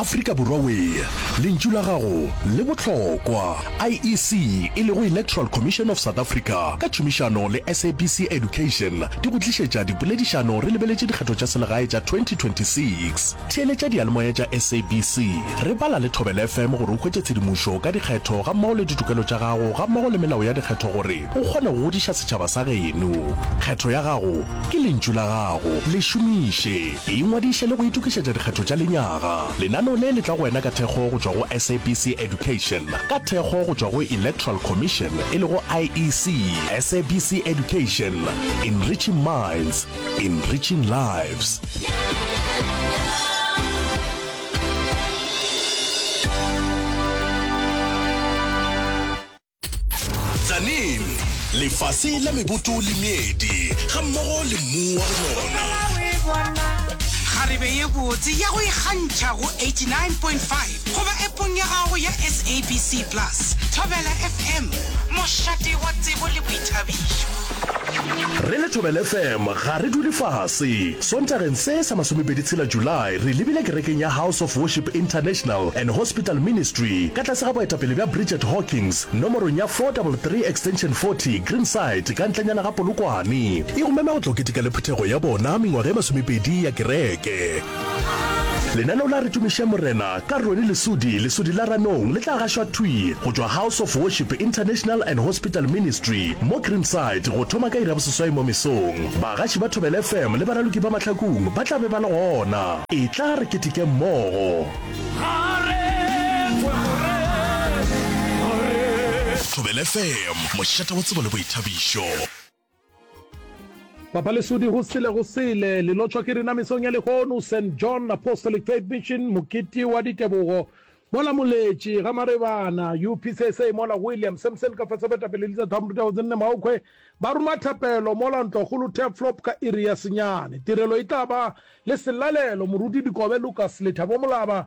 Afrika Borwa Wee, lentšu la gago le bohlokwa. IEC, e lego Electoral Commission of South Africa, ka tšhomišano le SABC Education, di go tlišetša dipoledišano re lebeletše dikgetho tša selegae tša 2026. Theeletša diyalemoya tša SABC, re bala le Thobela FM gore o hwetše tshedimošo ka dikgetho gammogo le ditokelo tša gago gammogo le melao ya dikgetho gore O kgona go godiša setšhaba sa geno. Kgetho ya gago ke lentšu la gago. Le šomiše. Ingwadiše le go itokišetša dikgetho tša lenyaga. Lenaneo le le tla go wena ka thekgo go tšwa go SABC Education, ka thekgo go tšwa go Electoral Commission e lego IEC. SABC Education, Enriching Minds, Enriching Lives. Tzaneen, lefase la meboto le meedi, ga mmogo le mmu wa go nona. Kgarebe ye botse ya go ikgantšha go 89.5 goba epong ya gago ya SABC Plus. Thobela FM, mošate wa tsebo le boithabišo. Re le Thobela FM ga re dule fase. Sontageng se sa masomepedi tshela July re lebile kerekeng ya House of Worship International and Hospital Ministry ka tlase ga boetapele bja Bridget Hawkins nomorong ya 433 extension 40 Greenside ka ntlenyana ga Polokwane. E go mema go tla o keteka le phuthego ya bona mengwaga e masomepedi ya kereke. lenaneo la re tumiše morena ka rone lesodi lesodi la ranong le tla gašwa thwi go tšwa house of worship international and hospital ministry mo greenside go thoma ka iraboseswai mo mesong bagaši ba thobele fm le baraloki ba mahlakong ba tla be ba le gona e tla re keteke mmogo thobele fm mošate wa tsebo le boithabišo Papa Lesodi go sele go sele, le lotšwa ke rena mesong ya lehono, St. John Apostolic Faith Mission, Mokete wa Ditebogo, mola Moletše, ga Marebana, UPCSA, mola William, Samson ka fase Betapele Lisa Thamru Teo Zinne Maokhwe, ba ruma thapelo mola Ntlwakgolo Turflop ka iri ya senyane. Tirelo e tla ba le selalelo, Moruti Dikobe Lucas, Lethabo Molaba,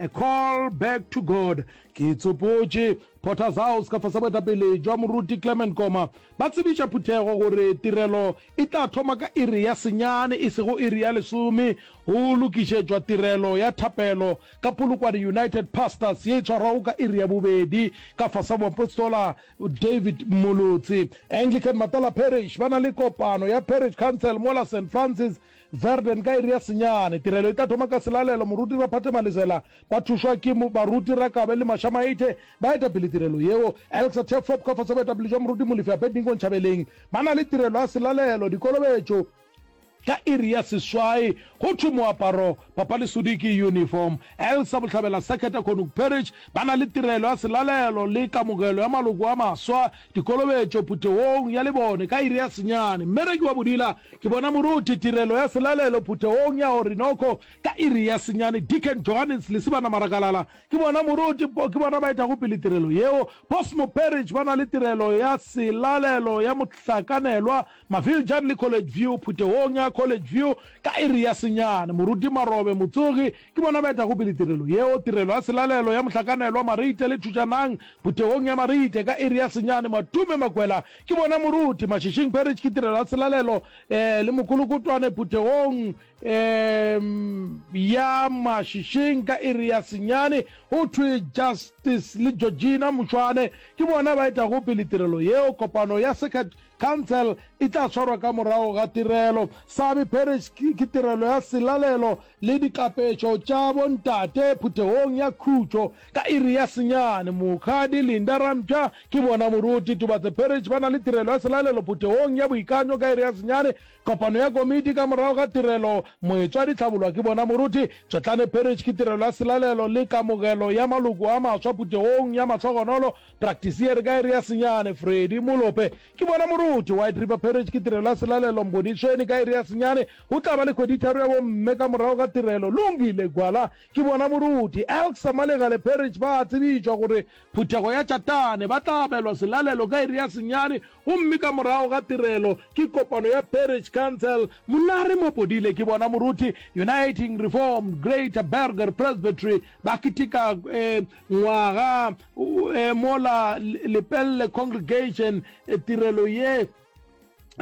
A Call Back to God, ke itsopotše, Potter's House, ka fase boetapele bja Moruti Clement Koma ba tsebiša phuthego gore tirelo e tla thoma ka iri ya senyane, e sego iri ya lesome, go lokišetšwa tirelo ya thapelo ka Polokwane United Pastors ye e tshwarwago ka iri ya bobedi ka fase moapostola David Molotsi. Anglican Matala Parish ba na le kopano ya Parish Council mola St. Francis Verden ka iri ya senyane. Tirelo e tla thoma ka selalelo. Moruti Raphathe Malesela ka thušwa ke baruti Rakabe le Masha Maite ba etapele tirelo yeo. Elksa Tefop ka fase boetapele jwa moruti Molefi Abednego Nchabeleng ba na le tirelo ya selalelo. Dikolobetšo ka iri ya seswai. Go thwe moaparo, papa le sudi ke uniform. Elsa Bohlabela Seketa Konuk Perich ba na le tirelo ya selalelo le kamogelo ya maloko a maswa Dikolobetšo phuthegong ya lebone ka iri ya senyane. Mmereki wa bodila, ke bona moruti tirelo ya selalelo phuthegong ya Orinoco ka iri ya senyane. Deacon Johannes Lesibana Marakalala, ke bona moruti po, ke bona ba etago pele tirelo yeo. Boss Moperich ba na le tirelo ya selalelo ya mohlakanelwa Maviljan le College View, Phuthegong ya College View ka iri ya senyane, Moruti Marobe Motsogi ke bona ba etago pele tirelo yeo. Tirelo ya selalelo ya mohlakanelwa Marite le Thušanang Phuthegong ya Marite ka iri ya senyane, Matume Makwela ke bona moruti, Mashishing Parish ke tirelo ya selalelo le Mokolokotwane Phuthegong ya Mashishing ka iri ya senyane. Go thwe Justice le Georgina Mošwane ke bona ba etago pele tirelo yeo. Kopano ya Circuit Khansele e tla swarwa ka morago ga tirelo. Sabi Parish ke tirelo ya selalelo le dikapetšo tša bontate phuthegong ya khutšo ka iri ya senyane. Mokgadi Linda Rampja ke bona moruti. Tubatse Parish ba na le tirelo ya selalelo phuthegong ya boikanyo ka iri ya senyane. Kopano ya komiti ka morago ga tirelo. Moetswadi Tlhabolwa ke bona moruti. Tšotlane Parish ke tirelo ya selalelo le kamogelo ya maloko a maswa phuthegong ya mahlogonolo Praktisi ye re ka e re ya senyane. Freddy Molope, Ke bona moruti. White River Parish ke tirelo ya selalelo. Mbonisheni, Ka iri ya senyane go tla ba le kgweditharo ya bomme ka morago ga tirelo. Lungile Gwala, Ke bona moruti. Elk Samalegale Parish ba a tsebišwa gore phuthego ya Chatane ba tla abelwa selalelo ka iri ya senyane gomme ka morago ga tirelo ke kopano ya Parish Council. Monare Mopodile, Ke bona moruti. Uniting Reformed Greater Burger Presbytery ba keteka Ngwaga eh, mola Lepelle Congregation eh, tirelo ye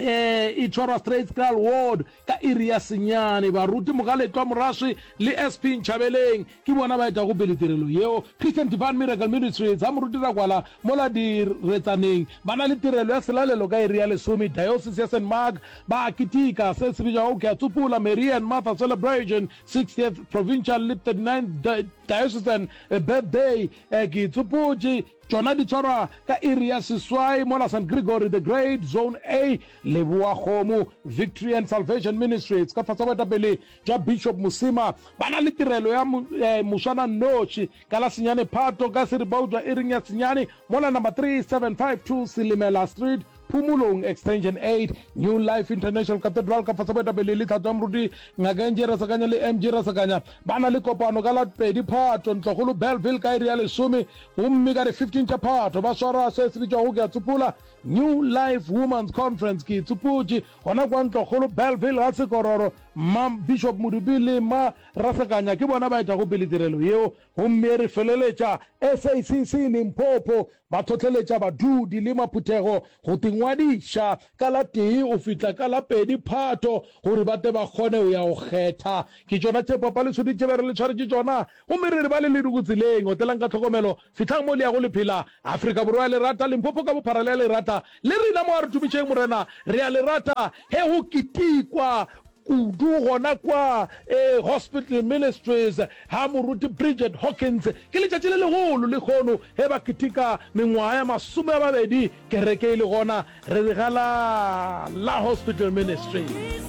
eh e tshwarwa straitscal ward ka iri ya senyane baruti mogaletwa moraswi le sp ntšhabeleng ke bona ba etago pele tirelo yeo christian divine miracle ministry tsa moruti rakwala mola diretsaneng ba na le tirelo ya selalelo ka iri ya lesome diocese ya st mark ba akitika se se bitšwago ke a tsopola marian martha celebration 60th provincial le 39 Diocesan Birthday, Ke itsopotše, tšona di tshwarwa ka iri ya seswai mola St. Gregory the Great, Zone A, Leboakgomo, Victory and Salvation Ministries ka fase ga boetapele bja Bishop Mosima ba na le tirelo ya moswananoši ka la senyane Phato ka seribautswa iring ya senyane mola number 3752 Silimela Street, Phumulong Extension Eight, New Life International Cathedral ka fase boetapele e le Tlhatso ya Moruti Ngaka Angie Rasakanya le MG Rasakanya ba na le kopano ka la pedi Phato Ntlokgolo Bellville ka iri ya lesome gomme ka di 15 tša Phato ba swara se se bitšwago ke a tsopola New Life Women's Conference ke tsopotše gona kwa Ntlokgolo Bellville ga Sekororo Mma Bishop Modupi le Mma Rasakanya ke bona ba etago pele tirelo yeo gomme re feleletša SACC Limpopo Ba hlohleletša badudi le maphuthego go tingwadiša ka la tee go fihla ka la pedi Phato gore ba tle ba kgone go ya go kgetha. Ke tšona tše papa le sudi tše be re le tshwaretše tšona gomme re re ba le le diko tseleng. Otelang ka tlhokomelo, fihlang mo le yago le phela. Afrika Borwa ya lerata, Limpopo ka bophara le ya lerata. Le rena mo a re tumišeng Morena, re a le rata ge go ketekwa kudu gona kwa e Hospital Ministries ga Moruti Bridget Hawkins. Ke letšatši le legolo le kgono ge ba keteka mengwaga ya masome a mabedi kereke e le gona re re ga la la Hospital Ministries.